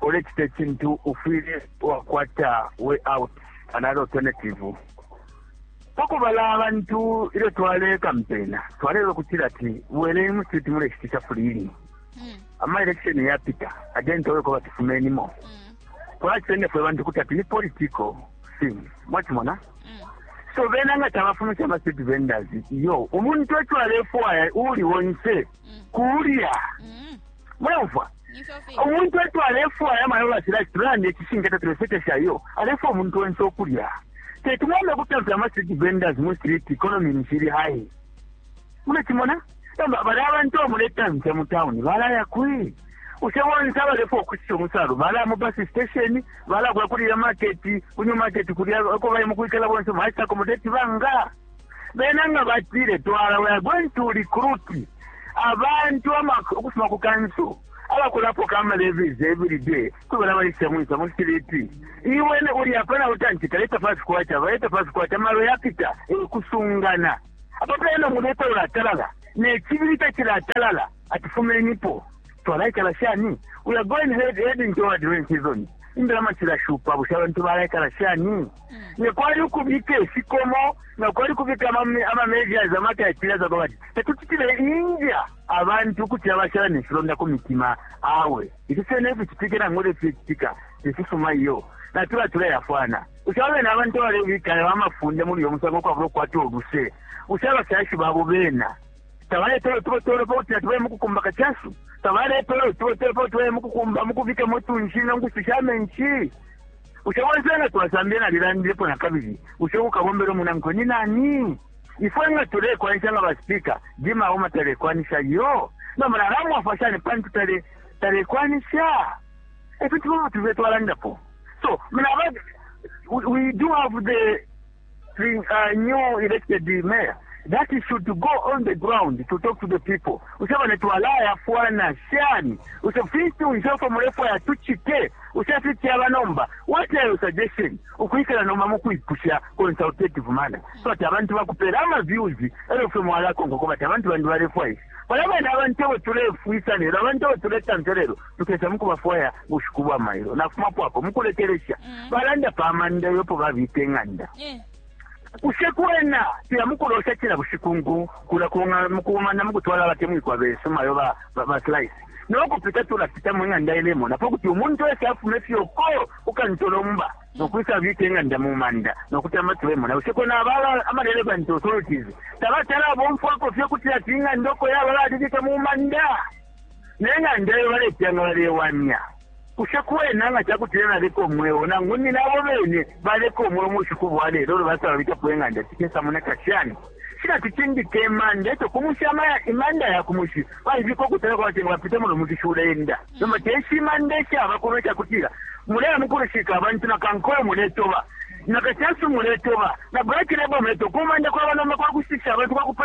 ulecita icintu ufwile wakwata way out another alternative pakubala abantu ilyo twalekampena twalelo kutila ati bweleni mu street muleshitisha fulili hmm. ama election yapita again twaleko batifumenimo hmm. twacitende fwe bantu kuti ati ni political thing mwacimona hmm. so bena nga tabafumisha ama street vendors yo umuntu eco alefwaya uuli wonse kulya mm -hmm. mulaumfwa umuntu etu alefwaya mayo batila tulande icishinka tatulesekesha iyo alefwa umuntu onse okulya tetumwambe kutampila ama street vendors mu street economy nishili high mulekimona nomba bali abantu amuletamfya mu town balaya kwi use bonse abalefa okusisa omusalu balaya mu bus station balakuya kuli ya market kunyu market kulya ako baye mukwikala bonse mwaisa accommodate banga Bena nga batile, Twala, we are going to recruit abantu ukufuma ku kanso abakulapoka ama levies every day kubela baisa mwisa mu street iwene uli apa na utanti kaleta fast kwacha baleta fast kwacha maro yapita kusungana apa pena muleta ulatalala ne kibiri takilatalala atufumenipo twalaikala shani we are going head, heading toward rain season imbela makirashupa busha abantu balaikala shani ne kwali ukubika ifikomo na kwali kubika ama measures ama criteria za bati tekuchitile inja abantu kuti abashala nefilonda ku mitima awe ifi fyona eficitike nangu lefikitika tefisuma iyo natula tulayafwana ushaba bena abantu abalebikala bamafunde muli uyo musango kwabula okukwata oluse ushaba abafyashi babo bena tabaletele utubotolo pakuti natubale mukukumba kachasu tabaletele utubotolo pakuti tubale mukukumba mukubikamo tunshi nangu susha menshi Bushe bonse nga twasambilila, nalilandilepo na kabili, bushe uukabombela umunankwe ni nani? Ifwe nga tulekwanisha nga ba Speaker, Jim Auma talekwanisha iyo. Nomba nalamwafwa shani pantu talekwanisha? E fintu fimo fimo tufwile twalandapo. So, mna, we do have the thing a new elected mayor that he should go on the ground to talk to the people use bane twalayafwana shani use fintu nje uko mulefwaya tuchite use fityaba nomba what are your suggestion ukwikala nomba mukwipusha consultative manner so ati abantu bakupera ama views elo fwe mwalakonga ko bati abantu bandi balefwaisha bala bana abantu abo tulefwisa lero abantu abo tuletamfya lero tukesa mukubafwaya bushiku bwa mailo nafumapo apo mukulekelesha mm. balanda pa manda yopo babika ing'anda eh. kushe kwena tila mukulosha cila bushiku ngu kula mukumana mukutwala batemwikwa besu mayo ba, ba, ba slice nokupita tulapita mu ng'anda ilemona po kuti umuntu wese afuma efyoko ukantolomba mm. nokwisa abika eng'anda mu manda nokuti amatulemona useko nabala amalele bantu authorities tabatala bomfwako fye kuti ati ing'anda oko yaba balibika mu manda ne ng'anda iyo baleteya nga balewamya. Bushe kwena nga ca kutila naleka umweo nangu nine abo bene baleka umweo mu bushiku bwa lelo ilyo basala babikapo ing'anda cikesamoneka shani? Shi natucindike imanda, e co ku mushi imanda ya ku mushi baibika ukutali kwa kuti nga bapita muno mushi shule-enda. Nomba te ishi imanda ishaba kuno ica kutila muleya mu kulushika abantu, na kankole muletoba, na kachasu muletoba, na black label muletoba, ku manda kwaba nomba kwa kushitisha abantu, kwa kuponesha.